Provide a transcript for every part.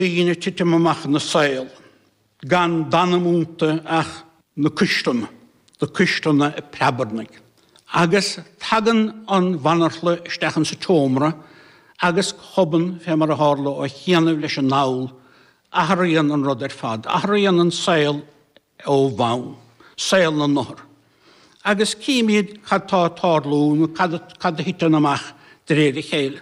daoine ag titim amach ina saol gan d'anam iontu ach na cuisleanna, na cuisleanna ag preabarnaigh. Agus tagann an bhanarthla isteach insa tseomra agus go hobann, fé mar a tharla ó chianaibh leis an ndall, athraíonn an rud ar fad, athraíonn an saol ó bhonn, saol na n-othar. Agus címíd cad tá ag tarlú nó cad a thiteann amach de réir a chéile.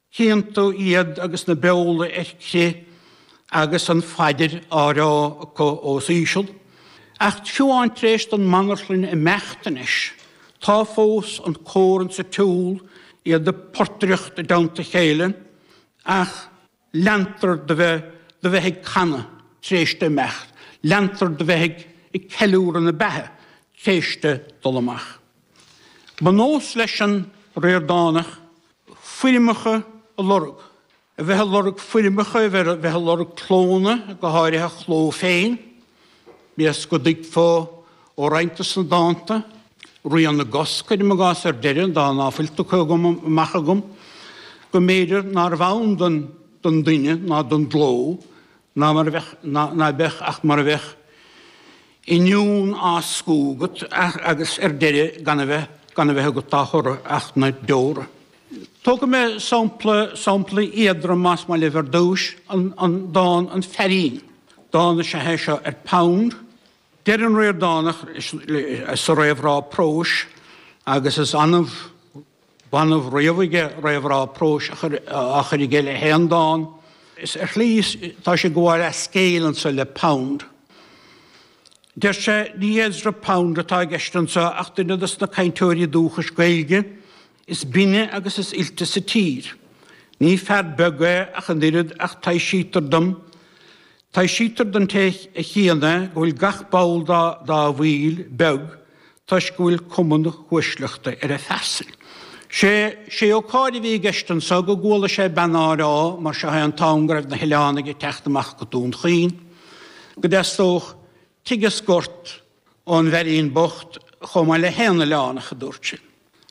Chíonn tú iad agus na beola ar crith agus an phaidir á rá acu os íseal. Ach fiú amháin tar éis don mbanarthlain imeacht anois tá fós an cór insa tsiúl, iad ag portaireacht i dteannta chéile, ach leantar do bheith do bheith ag canadh tar éis di imeacht, leantar do bheith ag ceiliúradh na beatha tar éis di dul amach. Ba nós leis an Ríordánach foirmeacha a lorg, a bheith ag lorg foirmeacha, a bheith ag lorg clónna, go háirithe a chló féin, bíodh is go dtuigfeá ó roinnt de sna dánta, Rian na gCos, cuirim i gcás, ar deireadh, dán ná fuil tugtha agam amach agam, go mb'fhéidir nárbh ann don duine ná don gcló Ná mar a bheadh, ná ná beadh ach mar a bheadh inniún á scamhadh agat agus ar deireadh gan a bheith, gan a bheith agat dá thoradh ach na deora. Tógfaidh mé sampla, sampla éadrom más maith libh ar dtúis, an, an dán An Feairín, dán is ea é seo ar Pound. Deir an Ríordánach sa réamhrá próis agus is annamh b'annamh riamh aige réamhrá próis a chur aige le haon dán. Is ar shlí tá sé ag gabháil leathscéal anso le Pound. Deir sé, ní Ezra Pound atá i gceist anso ach duine dos na cainteoirí dúchais Gaeilge is binne agus is oilte sa tír. Ní fear beag é ach an oiread ach taibhsítear dom, taibhsítear don té a chíonn é go bhfuil gach ball dá bhaill beag toisc go bhfuil cuma na huaisleachta ar a phearsain. Sé sé an comhrá a bhí i gceist anso go gcuala sé bean á rá mar seo an t-am go raibh na hOileánaigh ag teacht amach go Dún Chaoin go dteastódh tigh is gort ón bhfeairín bocht chomh maith le haon Oileánach a dúirt sin.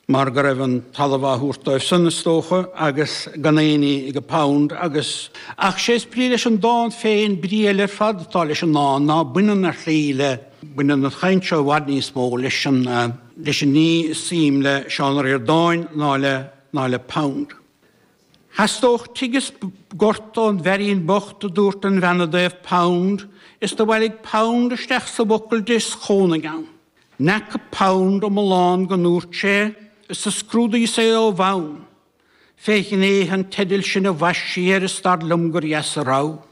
mar go raibh an talamh á thabhairt dóibh san, is dócha, agus gan éinní aige Pound, agus. Ach sé is brí leis an dán féin, brí eile ar fad atá leis an ndán ná baineann ar shlí le, baineann an chaint seo i bhfad níos mó leis an, leis an ní is suim le Seán Ó Ríordáin ná le, ná le Pound. Theastódh tigh is gort ón bhfeairín bocht a dúirt an bhean i dtaobh Pound, is do bhailigh Pound isteach sa bhfocal di is chónaigh ann. N'fheaca Pound iomlán go ndúirt sí é, is do scrúdaíos é ó bhonn Fé ghnéithe an teidil sin a bhaist sí air is dar liom gur dheas a rogha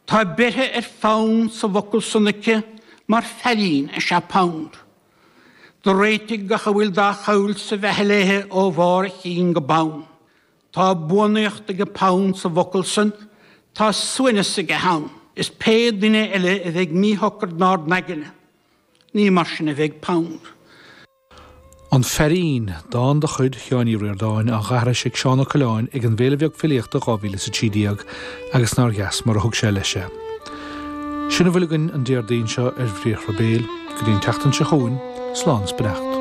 Tá beirthe ar Phound sa bhfocal san aici mar feairín is ea Pound Do réitigh gach a bhfuil dá chabhail sa bheatha léi ó bharr a chinn go bonn. Tá buanaíocht age Pound sa bhfocal san, tá suaimhneas aige ann. Is pé duine eile a bheidh míshocair inár n-aigne, ní mar sin a bheidh Pound. An Feairín, dán de chuid Sheáin Uí Ríordáin, á aithris ag Seán Ó Coileáin ag an bhFéile Bheag Filíochta 2000 is 13, agus nár dheas mar a thug sé leis é. Sin a bhfuil againn an Déardaoin seo ar Bhriathra Béil. Go dtí an tseachtain seo chugainn, slán 's beannacht.